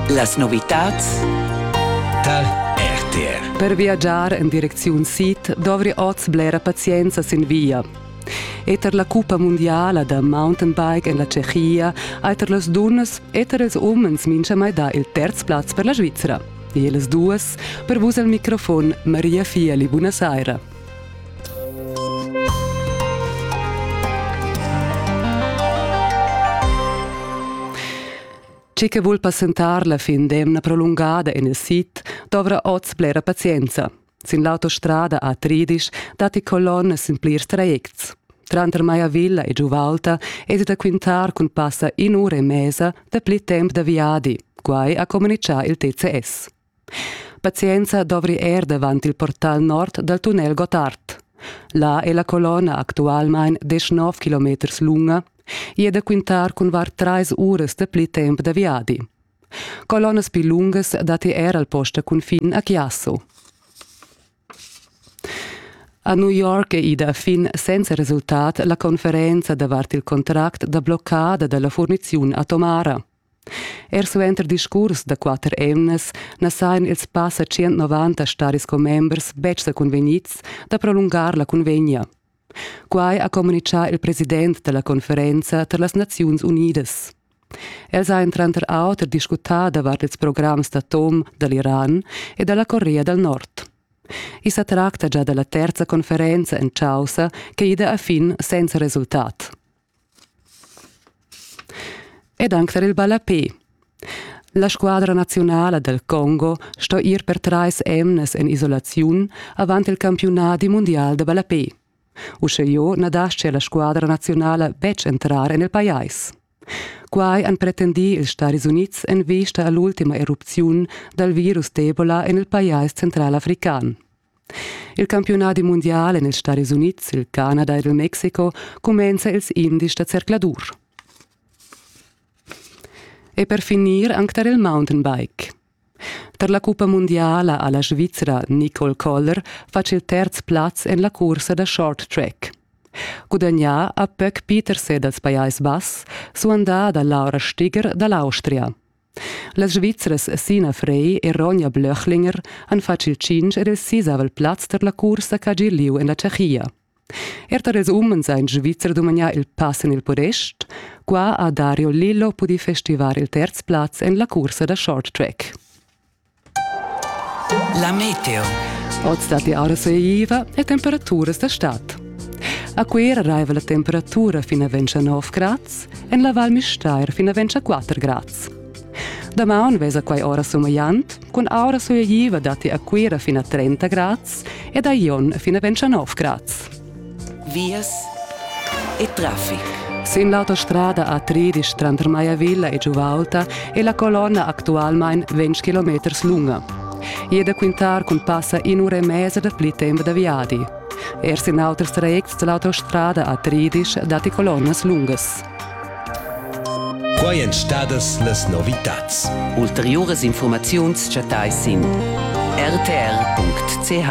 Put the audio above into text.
Las novitads tar RTR. Per viagiar en direcziun sid dovri oz blera pazienza sin via. Eter la cuppa mundiala da mountainbike en la Tschechia ha eter las dunnas eter ils umens mintgamai dà il terz plaz per la Svizra. E las duas per vus al microfon Maria Fieli. Buonasera. Chi che vul passentar la fin d'emna prolungada en il sid dovra oz blera pazienza. Sin l'autostrada A-Tridisch datti colonnas sin plirs trajects. Tranter Maiavilla e Giuvalta es da quintar cun passa in'ura e mesa dapli temp da viadi, quai ha communichà il TCS. Pazienza dovri er davant il portal nord dal tunnel Gottard. Là è la colonna actualmain deschnov kilometers lunga e è da quintar cun var trais uras da pli temp da viadi. Colonnas pli lungas datti er al post da cunfin a Chiasso. A New York è ida fin senza resultat la conferenza davart il contract da bloccada dalla furniziun atomara. Er suenter discurs da quatter emnas na sajan ils passa tschient-novanta staris commembers betg sa cunvegnids da prolungar la cunvegna. Quai ha communitgà il president da la conferenza tar las Naziuns Unidas. Els hajan tranter auter discutà davart ils programs d'atom da l'Iran e da la Corea dal Nord. I sa tracta gia da la terza conferenza en chaussa che ida a fin senza resultat. Ed anc var il ballapè. La squadra naziunala del Congo sto ir per trais emnas en isolaziun avant il campiunadi mundial da ballapè. Uscheo na dastia la squadra naziunala betg entrar en il pajais. Quai han pretendì ils Stadis Unids en vista a l'ultima erupziun dal virus d'Ebola en il pajais centralafrican. Il campiunadi mundial en ils Stadis Unids, il Canada ed il Mexico cumenza ils indies da zercladur. E per finir anc tar il mountainbike. Tar la cuppa mundiala ha la Svizra Nicole Koller fatg il terz plaz en la cursa da short track. Gudagnà ha Pöck Peterse dals Pajais Bass, suandà da Laura Stiger da l'Austria. Las Svizras Sina Frey e Ronja Blöchlinger han fatg il tschintg ed il sisavel plaz tar la cursa ch'ha gi lieu en la Tschechia. Er tar ils umens ha in Svizzer dumagnà il pass en il podest. Qua ha Dario Lillo pudì festivar il terz plaz en la cursa da short track. La meteo. Oz dat die RSIva e temperaturas da stad. A Cuera raiva la temperatura fino a 29 grads, en la Val Müstair fino a 24 grads. Damaun vesa quai ora somagliant, cun aura soiagiva datti a Cuera fino a 30 grads ed a Ion fino a 29 grads. vias e traffic. Sin l'autostrada A3 tranter Maiavilla e Giuvaulta è la colonna actualmain 20 km lunga. E da quintar cun passa in ura e mezza da pli tempo da viadi. Erst in auters trajects dell'autostrada A13 datti colonnas lungas. Qua èn stadas las novitads. Ulteriuras informaziuns chattai sin rtr.ch.